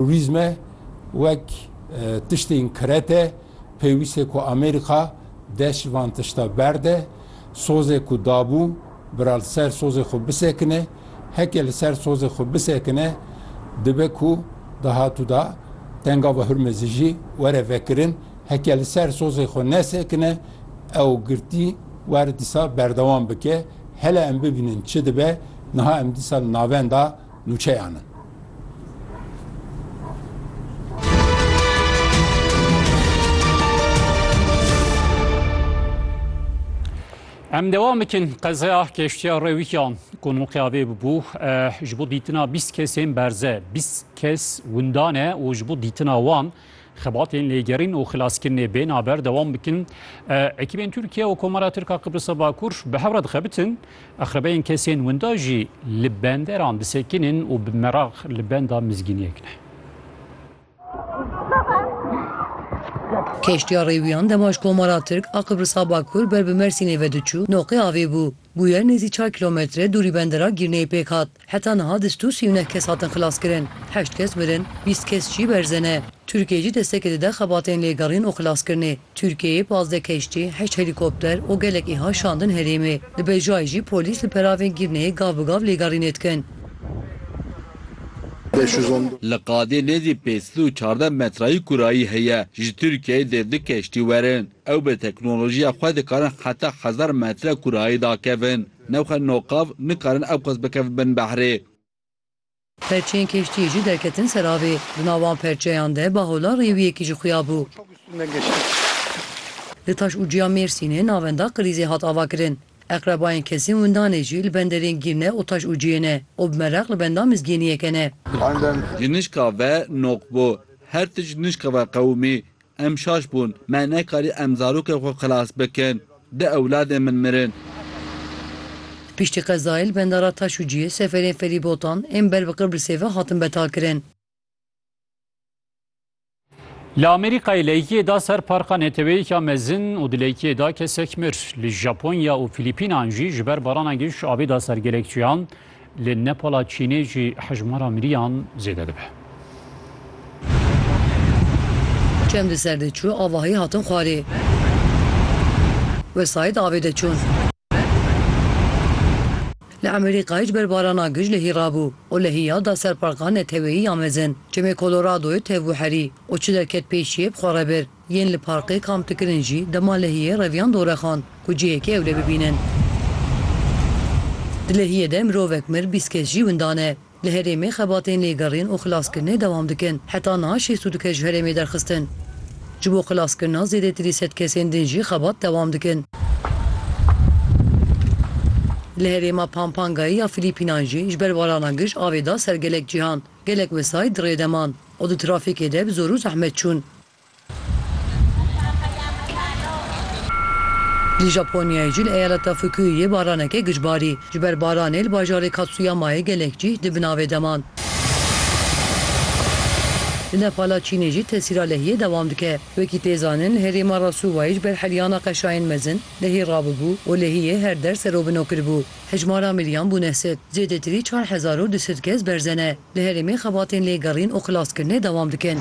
Turizme wek tiştên kirete pêwîste ku Amerîka dest ji van tişta berde. Sozê ku dabû bira li ser sozê xwe bisekine. Heke li ser sozê xwe bisekine dibe ku dahatûda Tengava Hurmezê jî were vekirin. Heke li ser sozê xwe nesekine ew girtî were dîsa berdewam bike. Hele em bibînin çi dibe. Niha em dîsa li navenda nûçeyan in. Em devam bikin qezaya keştiya rewîkiyan ku nûqiyavê bibû ji bo dîtina bîst kesên berze bîst kes windan e û ji bo dîtina wan Xebatên lêgerîn û xilaskirinê bê naber dewam bikin. Ekîbên Tirkiye û Komara Tirka Qibrisa Bakur bi hev re dixebitin. Axrebeyên kesên winda jî li benderan disekinin û bi meraq li benda mizgîniyek ne. Keştiya rêwiyan dema ji Komara Tirk a Qibrisa Bakur ber bi Mersînê vediçû, noqê avê bû. Bûyer nêzî çar kîlometre dûrî bendera Gîrneyê pêk hat. Heta niha di stû sî û neh kes hatin xilaskirin, heşt kes mirin, bîst kes jî berze ne. Tirkiye jî destekê dide xebatên lêgerîn û xilaskirinê. Tirkiyeyê pazdeh keştî, heşt helîkopter û gelek îha şandin herêmê. Li Bejayê jî polîs li peravên Girneyê gav bi gav lêgerînê dikin. Li qadê nêzî pênc sed û çardeh metrayî kurayî heye, ji Tirkiyeyê dê du keştî werin. Ew bi teknolojiya xwe dikarin heta hezar metre kurayî dakevin. Newxe noqav nikarin ewqas bikevin bin behrê. Perçeyên keştiyê jî derketin ser avê. Di nav van perçeyan de bahola rêwiyekî jî xuya bû. Li taş û ciya Mêrsînê navenda qilîzê hat avakirin. Eqrebayên kesên windanê jî li benderên Gîrne û taş û ciyê ne û bi mereq li benda mizgîniyeke ne. Ji nişka ve noq bû. Her tişt nişka ve qewimî. Em şaş bûn, me nekarî em zarokên xwe xilas bikin. Du ewladên min mirin. Piştî qezayê li bendara Taşûciyê seferên ferîbotan ên ber bi Qibrisê ve hatin betalkirin. Li Amerîkayê leyikiyê da ser parka neteweyêka mezin û di leyikiyê da kesek mir. Li Japonya û Fîlîpînan jî ji ber barana giş avê da ser gelek çiyan. Li Nepala Çînê jî hejmara miriyan zêde dibe. Çem di ser de çû avahî hatin xwarê. Wesayî di avê de çûn. Li Emerîkayê ji ber barana gij lehî rabû û lehî ya da ser parka neteweyî ya mezin. Çemê Koloradoyê tevbû herî û çi derket pêşiyê bi xwe re bir. Yên li parkê kamp dikirin jî dema lehiyê reviyan dorexan ku cihêkê ewle bibînin. Di lehiyê de mirovek mir bîst kes jî winda ne. Li herêmê xebatên lêgerîn û xilaskirinê dewam dikin. Heta niha şêst û du kes ji herêmê derxistin. Ji bo xilaskirina zêdetirî sed kesên din jî xebat dewam dikin. Li herêma Pampangayê ya Filîpînan jî ji ber barana gij avê da ser gelek cîhan. Gelek wesayît di rê de man û di trafîkê de bi zor û zehmet çûn. Li Japonyayê jî li eyaleta Fukuyuyê baraneke giç barî. Ji ber baranê li bajarê Katsuyamayê gelek cîh di binavê de man. Li Nepala Çînê jî tesîra lehiyê dewam dike. Wekî tê zanin li herêma Rasuwayê ji ber heryana qeşayên mezin lehî rabûbû û lehiyê her der serobino kiribû. Hejmara miriyan bûne sed. Zêdetirî çar hezar û du sed kes berze ne. Li herêmê xebatên lêgerîn û xilaskirinê dewam dikin.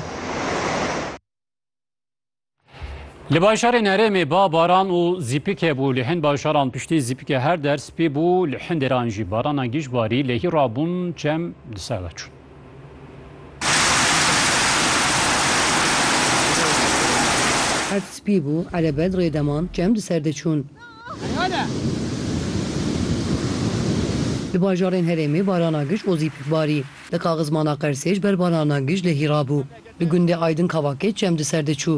Li bajarên herêmê ba baran û zîpik hebû. Li hin bajaran piştî zîpikê her der spî bû. Li hin dêran jî barana giş barî. Lehî rabûn çem di ser de çûn. Erd spî bû, erebet rê deman, çem di ser de çûn. Di bajarên herêmê barana gij ozî pik barî. Li Kaxizmana Qersê ji ber barana gij lehî rabû. Li gundê Aydin Kavakê çem di ser de çû.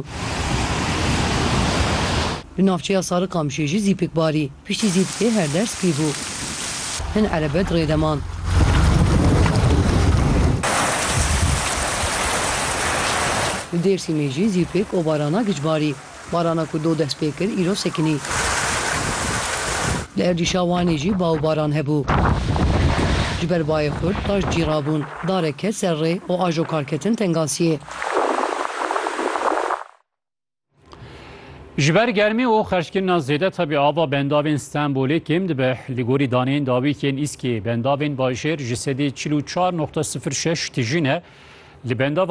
Li navçeya Sarikamişê jî zî pik barî. Piştî zîpikê her der spî bû. Hin erebe di rê de man. Li Dêrsîmê jî zîpik û barana gij barî. Barana ku doh dest pê kir îro sekinî. Li erdîşa Wanê jî ba û baran hebû. Ji ber bayê xurt taş cîra bûn. Darek ket ser rê û ajo kar ketin tengasiyê. Ji ber germî û xerckirina zêde tevî ava bendavên Stenbolê kêm dibe. Li gorî daneyên dawîk yên Îskê bendavên bajêr ji sedî çil û çar noqte sifir şeş tijî ne. Li bendava